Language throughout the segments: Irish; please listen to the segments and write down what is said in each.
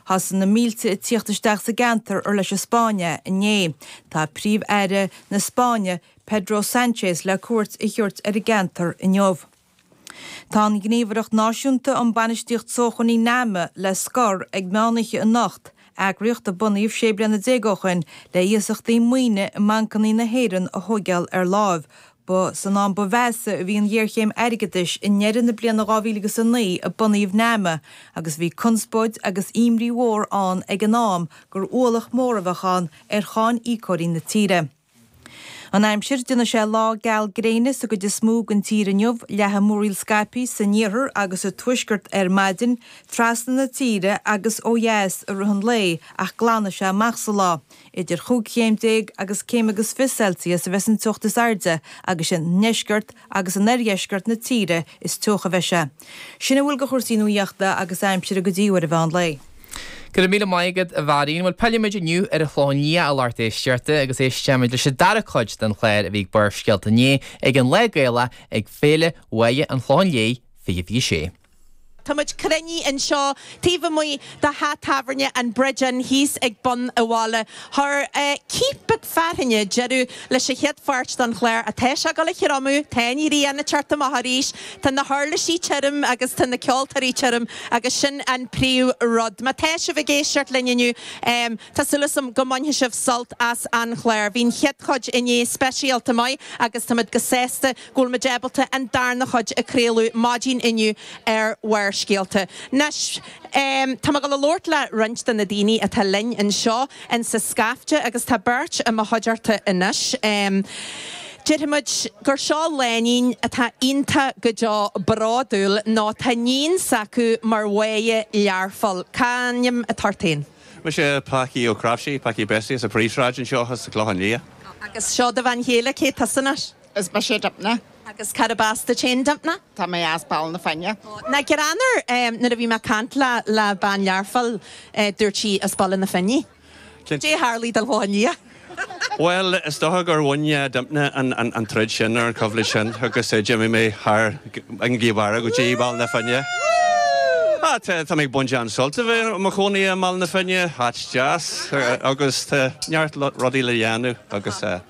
Thosaigh na mílte ag tíocht isteach sa gceantar ar leis an Spáinn é inné. Tá Príomh Aire na Spáinne Pedro Sanchez le cuairt a thiúirt ar an gceantar inniu. Tá an Ghníomhaireacht Náisiúnta um Bainistíocht Sócmhainní, Nama, le scor ag meán oiche anocht, eagraíocht a bunaíodh sé bliana déag ó shoin le iasachtaí maoine i mbancannaí na hÉireann a thóigeáil ar láimh, Ba san am ba mheasa a bhí an ghéarchéim airgeadais, i ndeireadh na bliana 2009 a bunaíodh Nama, agus bhí conspóid agus imní mhór ann ag an am gur ualach mór a bheadh ann ar cháiníocóirí na tíre. An aimsir, déanfaidh sé lá geal gréine sa gcuid is mó den tír inniu, leathfaidh múraíl scaipthe san iarthar agus sa tuaisceart ar maidin, trasna na tíre agus ó dheas i rith an lae, ach glanfaidh sé amach sa lá. Idir chúig chéim déag agus céim agus fiche Celsius a bheidh an teocht is airde agus sa ndeisceart agus in oirdheisceart na tíre is teocha a bheidh sé. Sin a bhfuil de chúrsaí nuaíochta agus aimsire go dtí uair an mheán lae. Go raibh míle maith agat, a Mharion. Bhuel, pillfimid inniu ar an Chlochán Liath, a lucht éisteachta, agus éistfimid leis an dara cuid den chlár a bhí ag Barrscéalta inné ag an Lá Gaelach ag Féile Mháire an Chlocháin Léith 2026. Táimid cruinnithe anseo taobh amuigh de theach tábhairne an Bridge Inn thíos ag bun an bhaile. Chuir cith beag fearthainne deireadh leis a chéad pháirt don Chlár ach tá sé ag gabháil a thriomú, tá an ghrian ag teacht amach arís, tá na huirlisí tirim agus tá na ceoltóirí tirim agus sin an príomh rud. Má tá sibh ag éisteacht linn inniu tá súil asam go mbainfidh sibh sult as an Chlár. Bhí an chéad chuid inné speisialta maith agus táimid breá sásta go bhfuil muid ábalta an darna chuid a chraoladh maidin inniu ar Bharrscéalta. Anois, tá mé ag gabháil a labhairt le roinnt de na daoine atá linn anseo in sa scaifte agus tá beirt i mo chuideachta anois. Déarfaidh muid gur seo lánúin atá iontach go deo bródúil nó tá níon s'acu mar Mháire Learphoill. Cá ainm atá ort féin? Mise Pacaí Ó Craiftí, Pacaí Bessie as an Phríomhshráid anseo, sa Chlochán Liath. Agus seo do bhean chéile, cé tusa anois? Is mise Dympna. Agus cárb as duit féin Dympna? Tá mé as Baile na Finne. Na Greanáir, em, nuair a bhí mé ag caint le, le bean Learphoill, eh, dúirt sí as Baile na Finne. Cinnte. Cé a tharlaigh do Dhá Liath? Bhuel, is dócha gur bhain, eh, Dympna an, an, an troid sin ar an choimhlint sin agus, eh, d'imigh mé thar an gcliabháire go dtí Ball na Finne. Ah, tá, tá mé ag baint an-sult a bheith i mo chónaí i mBaile na Finne, áit deas, eh, agus tá neart lo- rudaí le dhéanamh agus, eh,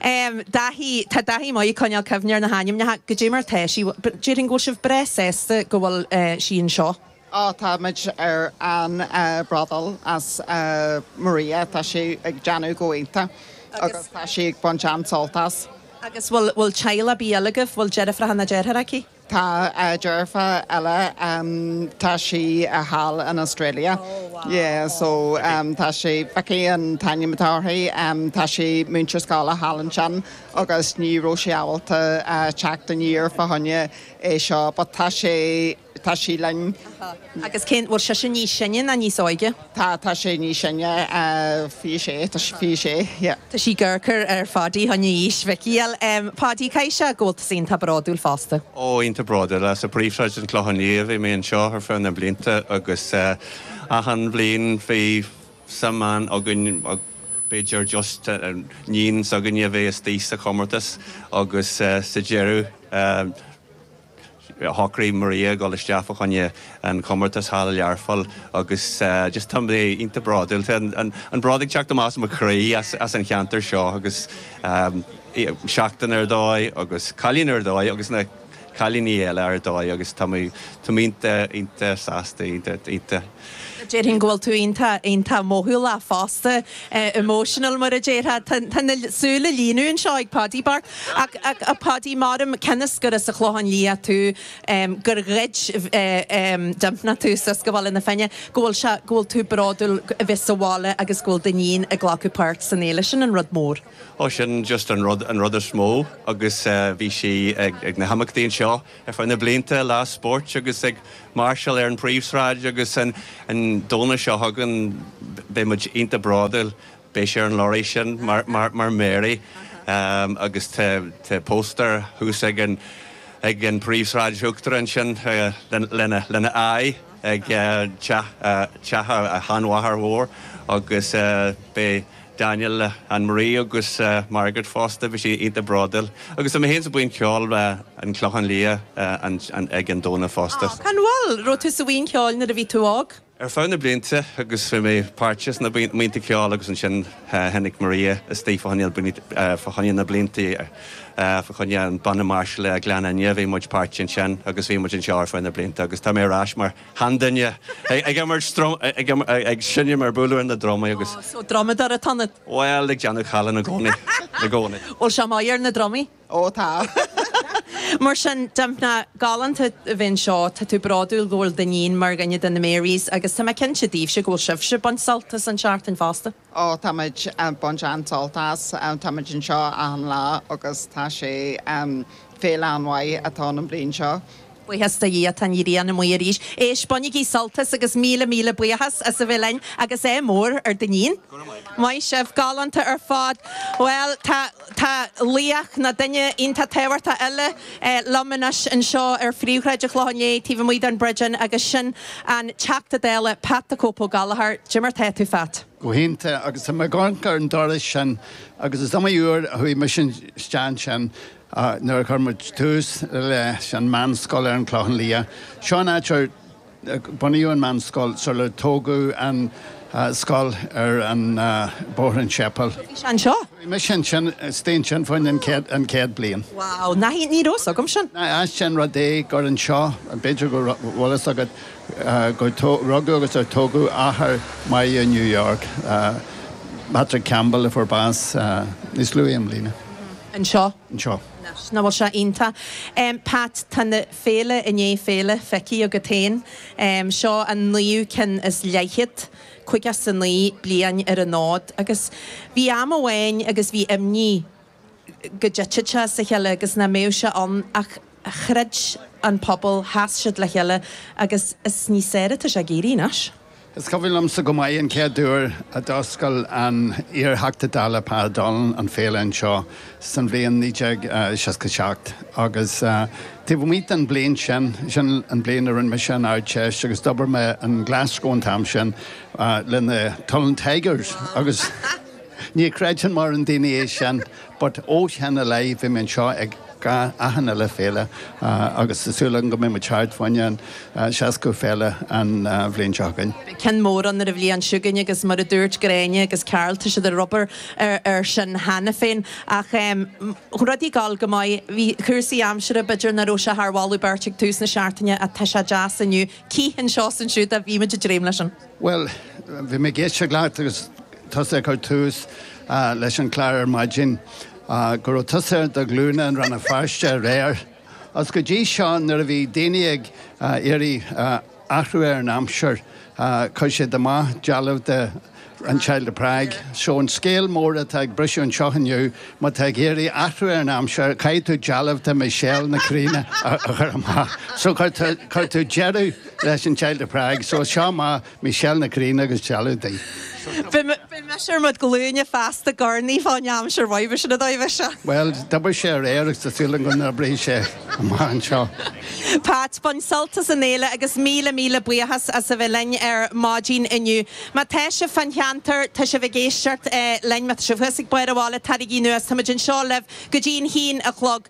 Dáithí, Tá Dáithí maith ag coinneáil cuimhne ar na hainmneacha. Goidé mar tá sí? Déarfainn go bhfuil sibh breá sásta go bhfuil sí anseo. Á, táimid an-bhródúil as Maria, tá sí ag déanamh go iontach agus tá sí ag baint an-sult as. Agus bhfuil teaghlach ar bith eile agaibh, bhfuil deirfiúracha ná deartháir aici? Tá deirfiúr eile, tá sí thall in Australia, yeah, so tá sí, Vicky an t-ainm atá uirthi, tá sí múinteoir scoile thall ansin agus ní raibh sí ábalta teacht aniar fá choinne é seo but tá sé, tá sí linn. Agus cén, bhfuil sise níos sine ná níos óige? Tá, tá sí níos sine, fiche sé, tá sí fiche sé, yeah. Tá sí ag amharc ar Phaudie chun aois Vicky a fháil. Paudie, caithfidh sé go bhfuil tusa iontach bródúil fosta? Ó, iontach bródúil as. I bpríomhshráid an Chlochán Liath a bhí mé anseo ar feadh na mblianta agus achan bhliain bhí suim ann againn, b'fhéidir just níon s'againne a bheith istigh sa chomórtas agus sa deireadh, Shocraigh Maria a dhul isteach fá choinne an chomórtas thall i Learpholl agus just tá mé iontach bródúil. Tá an bród ag teacht amach as mo chroí as an cheantar seo agus seachtain ar dóigh agus cailín ar dóigh agus na cailíní eile ar dóigh agus tá mé iontach iontach sásta. Déarfainn go bhfuil tú iontach, iontach mothúlach fosta, emotional mar a déarfá. Tá na súile ag líonadh anseo ag Paudie bocht. Ach a Paudie, m'anam, cionn is gur as an Chlochán Liath tú, gur ghoid Dympna tú suas go Baile na Finne, go bhfuil sé, go bhfuil tú bródúil a bheith sa bhaile agus go bhfuil d'iníon ag glacadh páirt san fhéile, sin an rud mór. Ó sin just an rud, an rud is mó agus bhí sí ag na himeachtaí anseo Ar feadh na blianta, lá spóirt agus ag máirseáil ar an bpríomhshráid agus an Domhnach seo chugainn beidh muid iontach bródúil, beidh sí ar an lorry sin mar Mary agus tá póstaer thuas ag an bpríomhshráid uachtarach ansin lena aghaidh ag teach a sheanmháthar mhóir agus beidh Daniel, Ann Marie agus Margaret fosta, bhí siad iontach bródúil. Agus tá mé féin sa buíon cheoil an Clochán Liath ag an Domhnach fosta. An bhfuil? raibh tú sa bhuíon cheoil nuair a bhí tú óg? Ar feadh na blianta agus bhí mé páirteach sna buíonta ceoil agus ansin tháinig Maria isteach fá choinne na blianta, fá choinne an banna máirseála Gleann Fhinne, bhí muid páirteach ansin agus bhí muid anseo ar feadh na blianta agus tá mé ar ais mar. Sheanduine. Ag imirt druma, ag seinm, ag bualadh ar na drumaí agus. Oh, so drumadóir atá ionat? Bhuel, ag déanamh callán i gcónaí, i gcónaí. Bhuel, sea, maith ar na drumaí. Oh, tá. Mar sin, Dympna, galánta a bheith anseo, tá tú bródúil go bhfuil d'iníon mar dhuine de na Marys agus tá mé cinnte daoibhse go bhfuil sibhse ag baint sult as an seachtain fosta. Ó, táimid ag baint an-sult as. Táimid anseo achan lá agus tá sé féile an-mhaith atá ann an bhliain seo. Buíochas do Dhia tá an ghrian amuigh arís. Éist, bainigí sult as agus míle míle buíochas as a bheith linn agus ádh mór ar d'iníon. Maith sibh, galánta ar fad. Bhuel, tá. Tá laoch nó duine iontach tábhachtach eile liom anois anseo ar phríomhshráid an Chlocháin Léith taobh amuigh den Bridge Inn agus sin an Teachta Dála Pat the Cope Gallagher. Cad é mar tá tú, a Phat. Go hiontach agus tá mé ag amharc ar an doras sin agus is iomaí uair a chuaigh mise isteach ansin nuair a chuir muid tús leis an meánscoil ar an Chlochán Liath. Seo an áit ar Bunaíodh an mheánscoil sular tógadh an scoil ar an Bóthar an tSéipéil. Bhí sé anseo? Bhí mise ansin, istigh ansin faoin an chéad bliain. Wow, ní ní raibh 's agam sin. Ait an rud é gur anseo, b'fhéidir go bhfuil fhios agat, gur rugadh agus ar tógadh athair Mary New York, Patrick Campbell a fuair bás níos luaithe i mbliana. Anseo? Anseo. Anois, nach bhfuil sé iontach. Pat, tá na. Féile i ndiaidh féile feicthe agat féin, seo an naoú ceann is leathchéad, caoga is a naoi bliain ar an fhód, agus bhí am amháin agus bhí imní go dtitfeadh sé as a chéile agus nach mbeadh sé ann ach chreid an pobal, sheas siad le chéile agus is níos fearr atá sé ag éirí anois. Is cuimhin liomsa go maith an chéad uair a d'fhoscail an t-iar-Theachta Dála Pa O'Donnell an féile anseo san bhliain 1967 agus taobh amuigh den bhliain sin, sin an bhliain a rinne mise an Ardteist agus d'obair mé in Glasgow an t-am sin le na Tunnel Tigers agus. Ní chreideann mórán daoine é sin but ó shin i leith bhí mé anseo ag achan uile féile agus tá súil agam go mbeidh muid thart faoin an seascadú féile an bhliain seo chugainn. Beidh ceann mór ann ar an bhliain seo chugainn agus mar a dúirt Gráinne agus Carl tá siad ag obair ar sin cheana féin ach rudaí ag dul go maith. Bhí cúrsaí aimsire, b'fhéidir nach raibh sé thar mholadh beirte ag tús na seachtaine ach tá sé deas inniu. Cith anseo 's ansiúd ach bhí muid ag dréim leis sin. Bhuel, bhí mé ag éisteacht leat agus tusa ag cur tús leis an gclár ar maidin go raibh tusa ar do ghlúine i Rann na Feirste aréir. Agus go dtí seo nuair a bhí daoine ag iarraidh athrú ar an aimsir chuir siad amach dealbh de An Child of Prague. Seo an scéal mór atá ag briseadh anseo inniu, má tá ag iarraidh athrú ar an aimsir caithfidh tú dealbh de Michelle Nic Grianna a chur amach. So cuir tú deireadh. leis an Child of Prague so seo amach Michelle Nic Grianna agus dealbh di. Bhí mise ar mo chuid glúine fosta ag urnaí fán aimsir roimhe sin a dtoigh mise. Bhuel d'oibrigh sé aréir agus tá súil agam go n-oibreoidh sé amach anseo. Pat, bain sult as an fhéile agus míle míle buíochas as a bheith linn ar maidin inniu. Má tá sibh fán cheantar, tá sibh ag éisteacht linn, má tá sibh thuas ag barr an bhaile, taraigí anuas, tá muid anseo libh go dtí an haon a chlog.